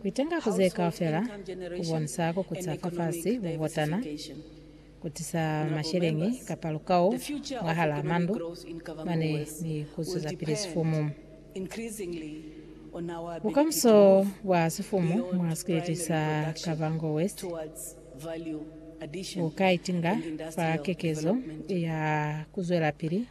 Kuitenga ku ze kaufela ku bonisa ku kuca fafasi, bubotana, ku tisa masheleñi kapa lukau mwahalaa mandu mane ni ku zwezapili sifumu. Bukamuso bwa sifumu mwa sikwiti sa Kavango West bu ka itinga fa kekezo ya ku zwelapili.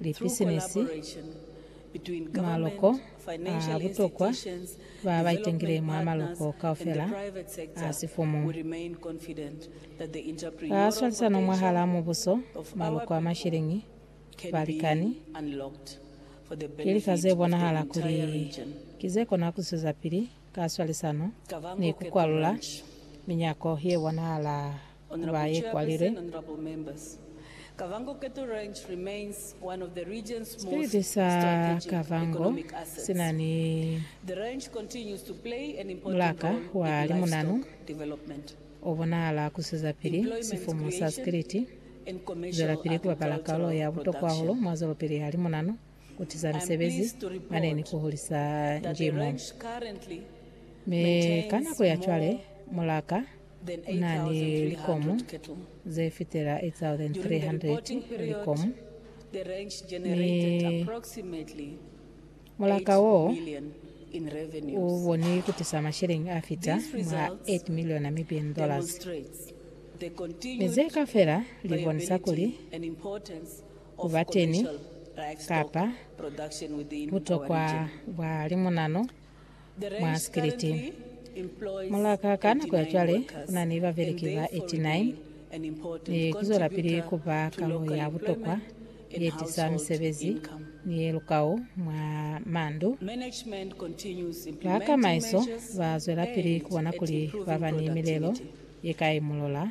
lipisinisi, maloko a butokwa ba ba itengile mwa maloko kaufela a sifumu. Ka swalisano mwahal'a mubuso, maloko a mashiliñi, balikani, ki lika ze bonahala kuli ki ze kona ku zwezapili ka swalisano ni ku kwalula minyako ye bonahala. ba ye kwa lilwe. Sipiliti sa Kavango si na ni mulaka wa limunanu o bonahala ku sizapili sifumu sa sikiliti, zwelapili ku bapala kalulo ya butokwa hahulu mwa zwelopili ya limunanu. ku tiza misebezi mane ni ku hulisa njimo. Mi ka nako ya cwale, mulaka u na ni likomu ze fitela 8,300 likomu, mi mulaka wo u boni ku tisa masheleñi a fita mwa 8 miliyo Namibian dollars. Mi ze kaufela li bonisa kuli ku ba teni kapa butokwa bwa limunano mwa sikiliti. Mulaka ka nako ya cwale ku na ni babeleki ba 89 ni ku zwelapili ku ba kalo ya butokwa ye tisa misebezi ni ye lukau mwa mandu. Ba kamaiso ba zwelapili ku bona kuli ba ba ni milelo ye ka imulola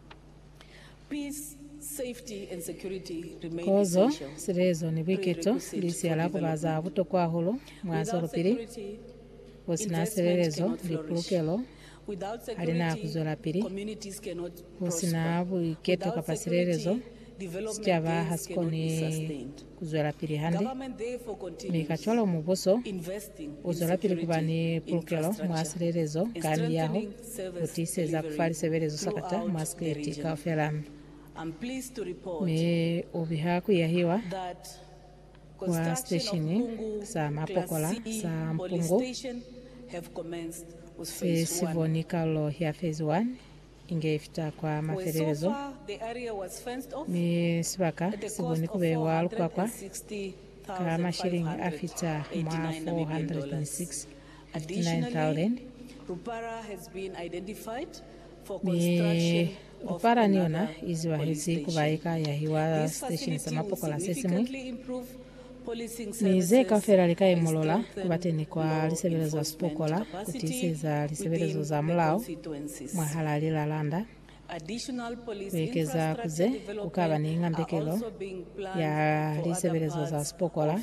Kozo, silezo, ni buiketo li siya la kuba za butokwa hahulu mwa zwelopili. Ku si na silelezo ni pulukelo, ha li na ku zwelapili. Ku si na buiketo kapa silelezo, sicaba ha si koni ku zwelapili hande, mi kacwalo mubuso u zwelapili ku ba ni pulukelo mwa silelezo ka miyaho, ku tiiseza ku fa lisebelezo sakata mwa sikliti kaufela. Mi u biha ku yahiwa kwa siteshini sa mapokola sa Mpungu se si boni Karolo ya Fezi 1. Inge ifita kwa mafelelezo, mi sibaka si koni ku bewa lukwakwa ka mashiliñi a fita mwa 469,000. Mi lupara ni yona i ziwahezi ku ba ye ka yahiwa siteshini sa mapokola se siñwi. Mi ze kaufela li ka imolola ku ba teni kwa lisebelezo za sipokola ku tiiseza lisebelezo za mulao mwahalaa lilalanda. Ku ekeza ku ze, ku ka ba ni ngambekelo ya lisebelezo za sipokola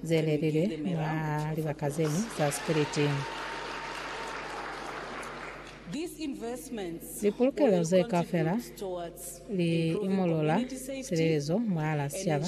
ze lelilwe mwa libaka ze ñwi za sipiliti. Lipulukelo ze kaufela li imolola silelezo mwahalaa sicaba.